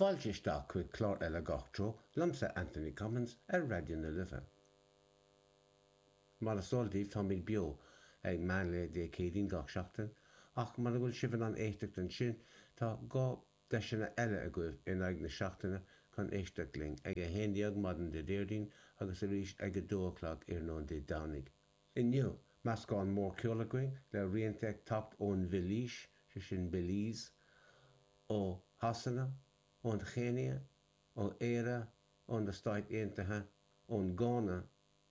Fáilte isteach chuig clár eile Gach Treo liomsa Anthony Cummins ar Raidió na Life. Mar is eol daoibh táimid beo ag meán lae Dé Céadaoin gach seachtain ach mura bhfuil sibh in ann éisteacht ansin tá dhá deiseanna eile agaibh in aghaidh na seachtaine chun éisteacht linn, ag a haon déag maidin Dé Déardaoin agus arís ag a dó a chlog iarnóin Dé Domhnaigh. Inniu, meascán mór ceoil againn le rianta ag teacht ón Bheilís, sé sin Belize, ó Shasana, ón Chéinia, ó Éire, ó na Stáit Aontaithe, ón Gána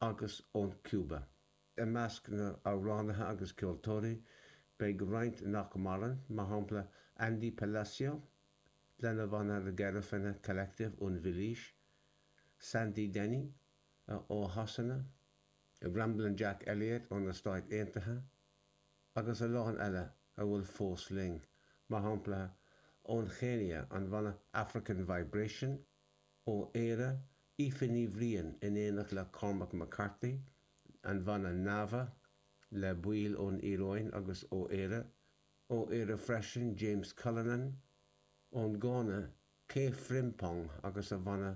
agus ón Cúba. I measc na n-amhránaithe agus ceoltóirí, beidh roinnt nach maireann, mar shampla Andy Palacio, lena bhanna The Garifuna Collective ón Bheilís, Sandy Denny, ó Shasana, Ramblin' Jack Elliott ó na Stáit Aontaithe, agus a lán eile a bhfuil fós linn, mar shampla ón Chéinia an bhanna African Vibration, ó Éire Aoife Ní Bhriain in éineacht le Cormac McCarthy, an bhanna Nava le baill ón Iaráin agus ó Éire, ó Éire freisin James Cullinan, ón Gána K Frimpong agus a bhanna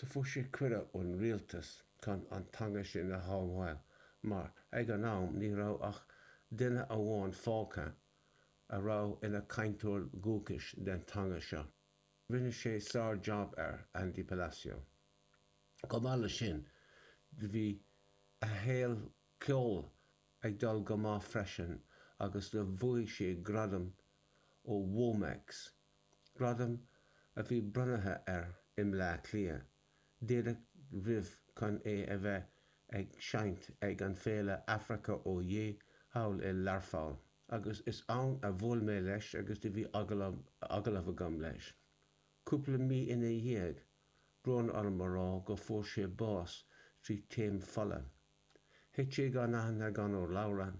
Do fuair sé cuireadh ón rialtas chun an teanga sin a shábháil mar ag an am ní raibh ach duine amháin fágtha a raibh ina chainteoir dhúchais den teanga seo. Rinne sé sár-jab air, Andy Palacio. Chomh maith leis sin, do bhí a shaol ceoil ag dul go maith freisin agus do bhuaigh sé gradam ó Womex gradam a bhí bronnaithe air i mBleá Cliath, díreach roimh chun é a bheith ag seinnt ag an Féile Africa Oyé thall i Learpholl, agus is ann a bhuail mé leis agus do bhí agallamh agam leis. Cúpla mí ina dhiaidh, brón orm a rá go fuair sé bás trí taom fola. Thit sé gan aithne gan urlabhra.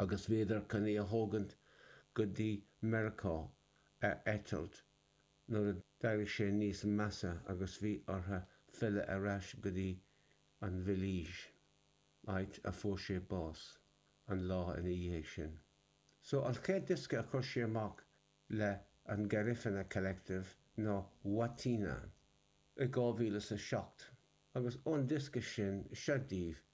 agus bhíodar chun é a thógaint go dtí Meiriceá ar eitilt nuair a d'éirigh sé níos measa agus bhí orthu filleadh ar ais go dtí an Bheilís, áit a fuair sé bás an lá ina dhiaidh sin. So an chéad diosca a chuir sé amach le an Garifuna Collective ná Wátina i 2007 agus ón diosca sin, seo daoibh